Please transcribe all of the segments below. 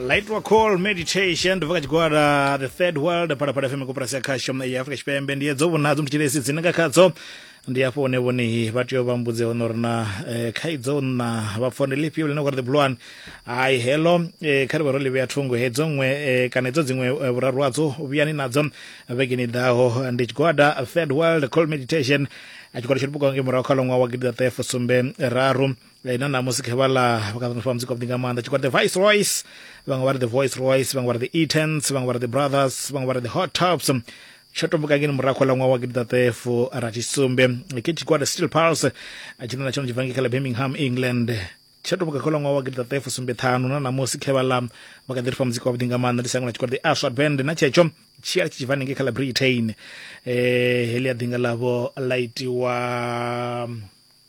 Light Rock Call Meditation ndobva kachigwara The Third World pala pala FM kopera sia khasho ya Afrika Chipembe ndiye dzo vhonadzo mchilesi dzine nga khadzo ndi afho ne vhone vha tea vha mbudze ono rina eh, khaidzo na vha phone lifhio lene gore the blue one ai hello eh, kha ri vha ro livhea thungo hedzo nwe eh, kana hedzo dziṅwe eh, vhuraru hadzo vhuyani nadzo vhegeni ḓaho ndi tshigwada Third World Call Meditation a tshigwada tsho libuka nge murahu kha ḽoṅwa wa gidi ḓaṱahe fusumbe raru Eh, na ṋamusi khe vha ḽa vhakaṱano fam dzi kwavhuḓi nga maanḓa tshikwa the vice royce vhaṅwe vha ri the voice royce vhaṅwe vha ri the etans vhaṅwe vha ri the brothers vhaṅwe vha ri the hot tops tsho tomboka ngeni murahu ḽa ṅwaha wa gidiḓaṱefu rathi sumbe ke tshigwada steel pulse tshine na tshone tshi bva ngei kha ḽa birmingham england tsho tomboka kha ḽa ṅwaha wa gidiḓaṱefu sumbe ṱhanu na ṋamusi khe vha ḽa vha kha ḓi ri fa muzika wavhuḓi nga maanḓa ndi sango ḽa tshigwada the aswad band na tshetsho tshi a tshi tshi bva nengei kha ḽa britain um heḽi a ḓinga ḽavho ḽa itiwa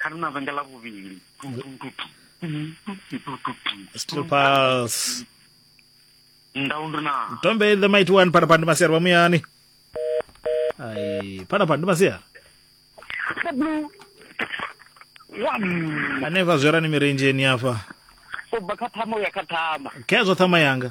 kha ri na venge ḽa vhuvhili stupals ndau ndi na tombe the mighty one phalaphala ndi masiari vha muyani ai phalaphala ndi masiari hanefha zwerani mirendzheni afha ubva kha thama uya kha thama khezwo thama yanga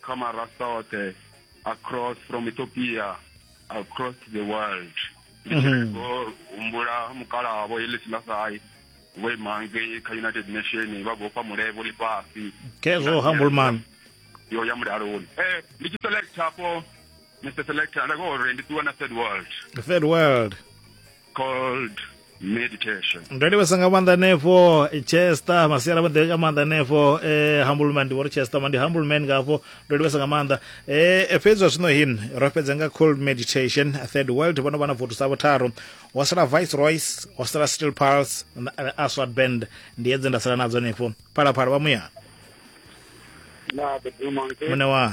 Kama Rasaote, across from Ethiopia, across the world. Ndi tshi Mhm. khou humbula mukalaha vho Ellis Lasai vho ima ngei kha United Nation vha vhofha mulevo ḽifhasi khezwo humble man yo ya mulaloni. Eh, ndi tshi select hafho Mr. Selector nda khou uri ndi ṱuwa na third world. the third world called meditation. ndo livhesa nga maanḓa henefho chester masiala vho ḓivheka maanḓa henefho eh, humble man ndi vho ri chester ma ndi humble man ngafho ndo livhesa nga maanḓa eh, fhedzi zwa zwino hin ro fhedza nga cold meditation third world vhono vha na votu sa vhutharu wa sala vice royce wa sala steel pulse na eh, aswad band ndi edze nda sala nadzo henefho phalaphala vha muyana Na the demon. muṋe wa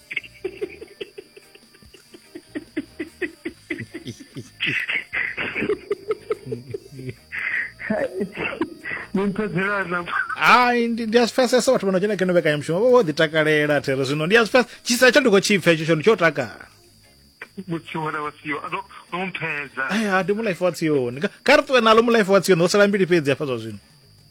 hai ndi a zwi pfesesa vhathu vha no dzhena keno vhekanyamushumo vho vho ḓi takalela there zwino ndi a zwi pfesa tshisa tsha ndi khou tshi pfa hetsho tshone tsho takala mutsiwana wa siyo ano no mphedza aya ndi mulife wa tsioni kha ri ṱuwe nalo mulife wa tsioni ho sala mbili fhedzi hafha zwa zwino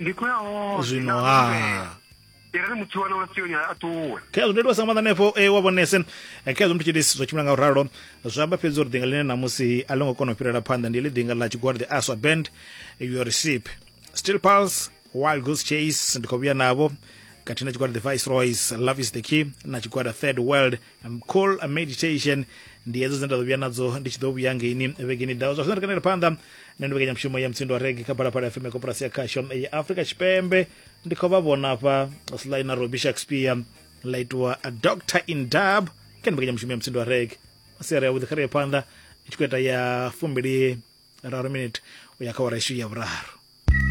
ndi khou ya hone zwino na ha humbela. i re muthu wana wa sioni a ṱuwe khezwo ndo livhasa nga maanḓa hanefho e wa vhonese Eh, khezwo muthu tshitisi zwa tshimbila nga u ralo zwa amba fhedzi uri ḓinga ḽine ṋamusi a ḽo ngo kona u fhirela phanḓa ndi ḽi ḓinga ḽa tshigwada the aswa band your receipt still pulse wild goose chase ndi khou vhuya navho khathihi na tshigwada the viceroys love is the key na tshigwada third world um, call a meditation ndi hedzo dzine nda ḓo vhuya nadzo ndi tshi ḓo vhuya ngeini vhegeni dawo zwa zwino ri kanele phanḓa nṋe ndi mbekanyamushumo ya mutsindo wa regi kha phalaphala fm ya koporasi ya khasho ya afrika tshipembe ndi khou vha vhona hafha sly na robi shakespeare ḽa itiwa a doctor in dub kha ndi mbekanyamushumo ya mutsindo wa regi masiari yavhuḓi kha ri ye phanḓa i tshi khou ita ya fumbili raru minute u ya kha wara ishu ya vhuraru